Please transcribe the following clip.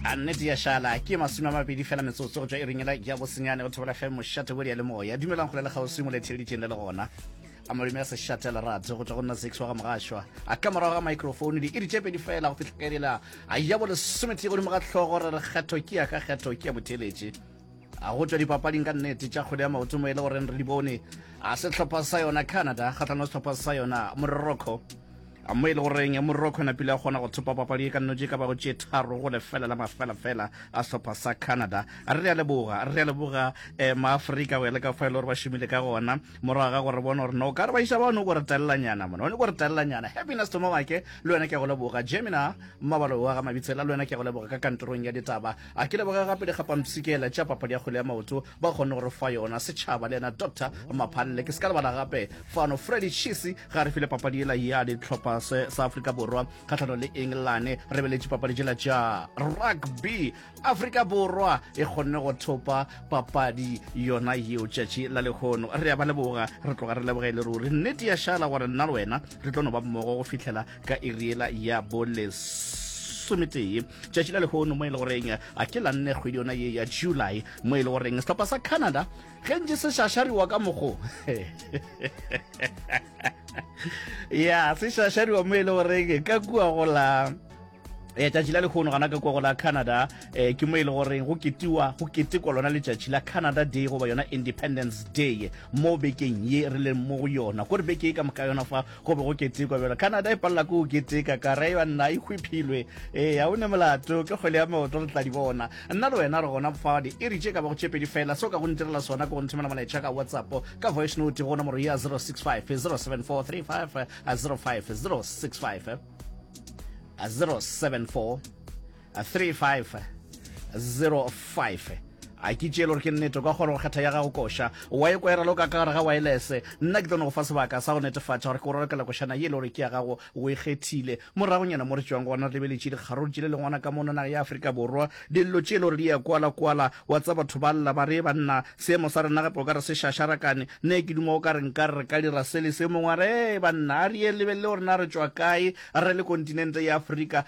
a nnete ya šala ke masome a mabedi fela metsotso go tswa e ringela ya bosenyane go thobela fm mošate bodi ya le moya dumelang go le lekgauswi mo letheleditšeng le le gona a malome a sešate lerato go tswa go nna six wa ga mogašwa a ka morago ga microphone di iri tšepedi fela go fitlhekelela a ya bo lesometee godimo ga tlhogo re re kgetho ke ya ka kgetho ke ya botheletše a go tšwa dipapading ka nnete tša kgwele ya maoto mo e le goreng re di bone a sehlopha sa yona canada kgatlhanong sehlopha sa yona morocco mo e le goreng morocco e napile a kgona go thopa papadi e ka nnotse ka bago tše tharo go lefela la mafelafela a sehlopha sa canada re a leboga re a leboga um maaforika go ya le ka fa e le gore ba šomile ka gona morago ga gore bona gore no ka re ba iša bano ko re telelanyana mona one ko re telelanyana happiness tomowake le wena ke ya go leboga gemina mmabalo wa ga mabitsela le wena ke ya go leboga ka kantorong ya ditaba A ke leboge gape dikgapamsikela tša papadi ya kgwele ya maoto ba kgonne go re fa yona setšhaba le yena Doctor Maphalle. Ke se ka lebala gape fano Freddy Chisi ga re file papadi yela ya ditlhopha se sa Afrika Borwa kgahlano le Engelane. Re beletše papadi tšela tša rugby. Afrika Borwa e kgonne go thopa papadi yona yeo tšatši la lekgono. Re a ba leboga, re tloga re leboga e le ruri. Nnete ya šala gore nna le wena re tlo no ba mmogo go fihlela ka e riela ya bolesometee tšatši la lehono mo e le goreng a ke la nne kgwedi yona ye ya july mo e le goreng sehlopha sa canada ge ntse se šašariwa ka mogo ya se šašariwa mo e le goreng ka kua go la eh tšatši la lekgono gana ka kwago la canada eh ke mo e le goreng go ketiwa go ketekwa lona letšatši la canada day goba yona independence day mo bekeng ye re leng mo go yona kore beke e ka moka yona fa Go be go ketekwa bjalo. Canada e palela ko o keteka ka re ya nna e hwiphilwe. Ee, a o ne molato ke kgwele ya maoto re tla di bona. Nna le wena re gona fa di iri tše ka ba go tše pedi fela so ka go ntirela sona ko go nthomela molaetša ka WhatsApp ka voice note go nomoro ya 065 074 35 05 065 074 3505 a ke tšeele gore ke nnete kwa kgona go kgetha ya gago koša wa e kwera loka ka gare ga waelese nna ke tlo ne go fa sebaka sa go netefatša gore ke o ralokela košana ye e le gore ke ya gago o e kgethile moragonyana mo re tšwang gona re lebeletše dikgaruru tše le lengwana ka mono naga ya aforika borwa dillo tše e le gore di ya kwala-kwala wa tsa batho ba lla ba re banna seemo sa rena gape o ka re se šašarakane ne ke duma o ka re nka re ka dira se le se mongwe a re banna a re ye lebelele gore na re tšwa kae re le kontinente ya aforika